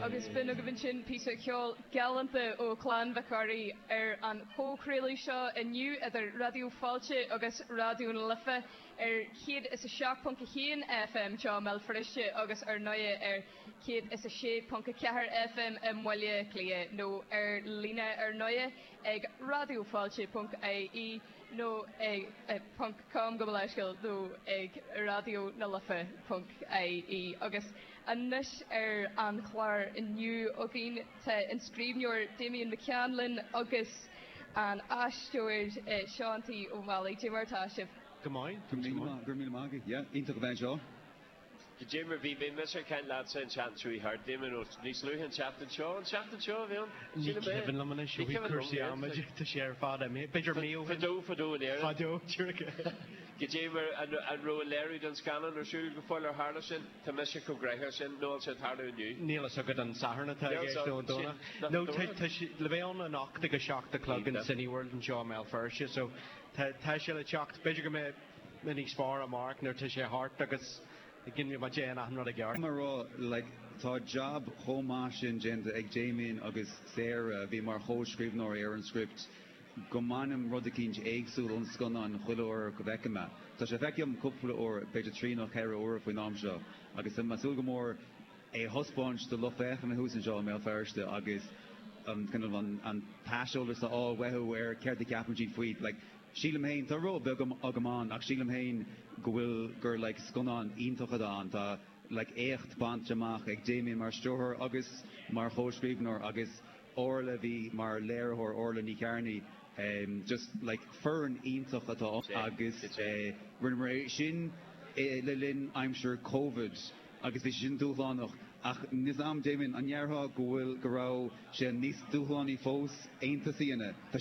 Agus b'in agaibh ansin píosa ceoil galánta ó Chlann Mhic Ruairí ar an chomhchraoladh seo inniu idir Raidió Fáilte agus Raidió na Life ar 107.1 FM i mBéal Feirste agus ar ndóigh ar 106.4 FM i mBaile Átha Cliath nó ar líne ar ndóigh ag raidiofáilte.ie. nó ponc com gabh mo leithscéal nó ag Raidió na Life ponc ie agus anois ar an chlár inniu againn tá an scríbhneoir Damian McCann linn agus an aisteoir Seán T Ó Meallaigh. Dé mar atá sibh? Go maith. Go raibh míle maith agat. Yeah, iontach a bheith anseo. D'imir, bhí, bhí, mise ar ceann leatsa an tseachtain seo í thart, d'imir nó níos luaithe an tseachtain seo, an tseachtain seo a bhí ann, sílim é. Ní cuimhin liom anois, ó bhí cúrsaí agam, tá sé ar fad imigh, b'fhéidir mí ó shin. Fadó, fadó in Éirinn. Fadó, tír a ceathair. D'imir, an, an raibh an léiriú den scannán ar siúl go fóill ar tharla sin? Tá mise chomh gréasáin sin, nó ansin tharla inniu. Níl fhios agam an Satharn atá i gceist nó an Domhnach. Nó tá, tá sé, le bheith ann anocht ag a seacht a chlog in Cineworld anseo i mBéal Feirste, so tá, tá sé le teacht, b'fhéidir go mbeidh, Beidh níos fearr amárach nuair tá sé thart agus go n-imeoidh má dhéan achan rud i gceart. Mar a déarfá like tá jab chomh maith sin déanta ag Damian agus Sarah a bhí mar chomhscríbhneoirí ar an script go mbainim rud eicínt éagsúil ón scannán chuile uair go bhfeicim é. Tá sé feicthe agam cúpla uair, b'fhéidir trí nó ceithre uair faoin am seo agus tá mé ag súil go mór é a thaispeáint do lucht féachana thuas anseo i mBéal Feirste agus an kind of an t-aiseolas a fháil uathu ar céard a cheapann siad faoi like Sílim féin, tá ról beag agam ann, ach sílim féin go bhfuil, gur like scannán iontach atá ann. Tá like éacht bainte amach ag Damian mar stiúrthóir agus mar chomhscríbhneoir agus Orla, bhí, mar léiritheoir, Orla Ní Chearnaigh, em, just like foireann iontach atá ann agus, eh, rinneamar é sin, eh, le linn aimsir Covid agus bhí sé sin dúshlánach ach níl fhios a'm Damian, an ndéarfá go bhfuil, go raibh sé níos dúshlánaí fós Aontas a dhéanamh? Tá sé.